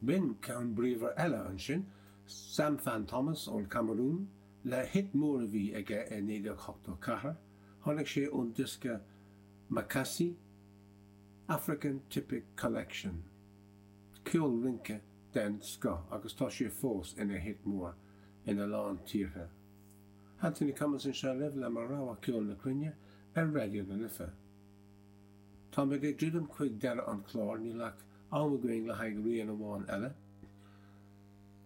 B'in ceann bríomhar eile ansin, Sam Fan Thomas ón Camarún, le hit mór a bhí aige i 1984, tháinig sé ón diosca Makassi, African Typic Collection, ceol rince den scoth agus tá sé fós ina hit mór ina lán tíortha. Anthony Cummins anseo libh le mo rogha ceol na cruinne ar Raidió na Life. Tá mé ag druidim chuig deireadh an chláir, níl ach am againn le haghaidh rian amháin eile.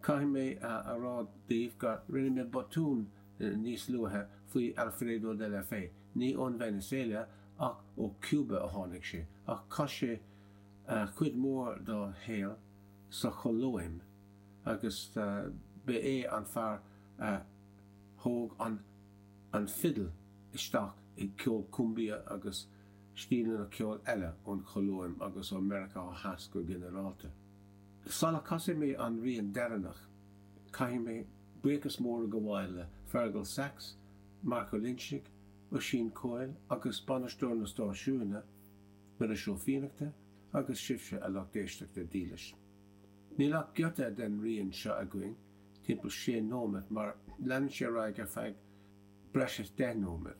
Caithfidh mé a rá daoibh gur rinne mé botún níos luaithe faoi Alfredo de la Fe. Ní ón Veiniséala ach ó Chúba a tháinig sé, ach chaith sé cuid mhór dá shaol sa Cholóim agus ba é an fear a thóg an fidil isteach i gceol cumbia agus stíleanna ceoil eile ón Cholóim agus ó Mheiriceá Theas go ginearálta. Sula casfaidh mé an rian deireanach, caithfidh mé buíochas mór a ghabháil le Fergal Sachs, Marc Ó Loinsigh, Oisín Coyle agus bainisteoir na stáisiúine, Muiris Ó Fiannachta, agus sibhse, a lucht éisteachta dílis. Níl ach giota den rian seo againn, timpeall sé nóiméad, mar leanann sé ar aghaidh ar feadh breis is deich nóiméad.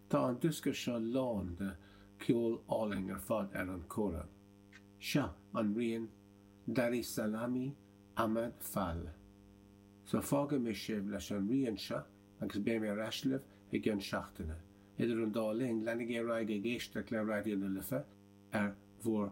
Tá an diosca seo lán de cheol álainn ar fad ar an kora. Seo an rian Darou Salami Ahmad Fall. So fágfaidh mé sibh leis an rian seo agus beidh mé ar ais libh i gceann seachtaine. Idir an dá linn, leanaigí ar aghaidh ag éisteacht le Raidió na Life ar bhur